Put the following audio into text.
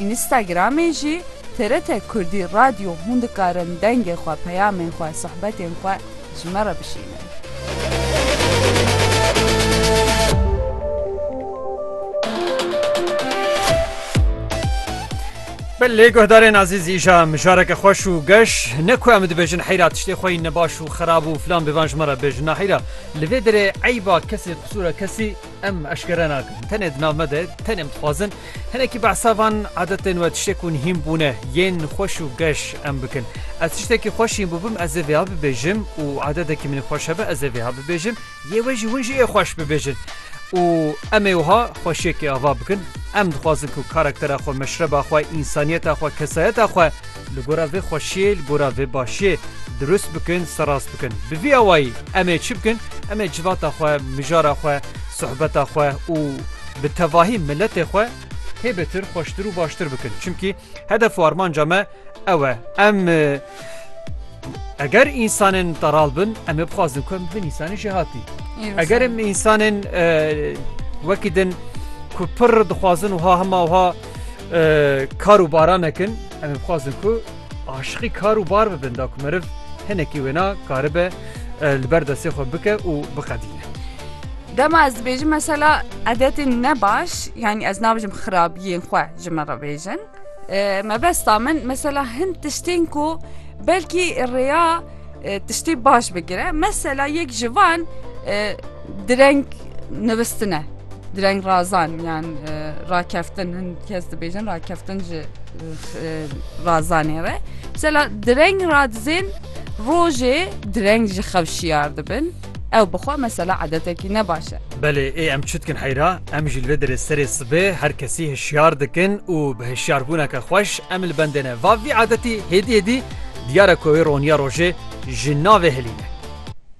Înîstagramê jî TRT Kurdî Radyo hûn dikarin dengê xwe, peyamên xwe, sohbetên xwe ji me re bişînin. Belê guhdarên azîz îja mijareke xweş û geş ne ku em dibêjin heyra tiştê xwe yî nebaş û xirab û filan bêvan ji me re bêjin naheyra li vê derê eyba kesê qisûra kesî Em eşkere nakin. Tenê di nav me de tenê em dixwazin hinekî behsa van adetên we tiştê ku nihîn bûne yên xweş û geş em bikin. Ez tiştekî xweş hîn bûbim ez ê vêha bibêjim û adedekî min ê xweş hebe ez ê vêha bibêjim yê we jî hûn jî ê xweş bibêjin û em ê wiha xweşiyekê ava bikin. Em dixwazin ku karaktera xwe, meşreba xwe, însaniyeta xwe, kesayeta xwe Li gora vê xweşiyê, li gora vê başiyê dirust bikin, serast bikin. Bi vî awayî em ê çi bikin? Em ê civata xwe, mijara xwe, sohbeta xwe û bi tevahî miletê xwe hê bêtir, xweştir û baştir bikin. Çimkî hedef û armanca me ew e. Em eger însanên teral bin, em ê bixwazin ku em bin însanê jêhatî. Eger em însanên wekî din ku pir dixwazin wiha hema wiha Kar û baran nekin em ê bixwazin ku aşiqî kar û bar bibin da ku meriv hinekî wêna karibe li ber destê xwe bike û biqedîne. Dema ez dibêjim mesela edetên ne baş yanî ez nabijim xirabiyên xwe ji min re bêjin. Mebesta min mesela hin tiştên ku belkî rêya Tiştî baş bigire mesela yek ji van direng nivistine direng razan yan rakeftin hin kes dibêjin rakeftin ji razanê re mesela direng radizên rojê direng ji xev şiyar dibin. Ew bi xwe mesela edetekî ne baş e. Belê ê em çi dikin heyra, em jî li vê derê serê sibê her kesî hişyar dikin û bi hişyarbûneke xweş em li bendê ne. Va vî edetî hêdî hêdî diyar e ku wê roniya rojê ji navê hilîne.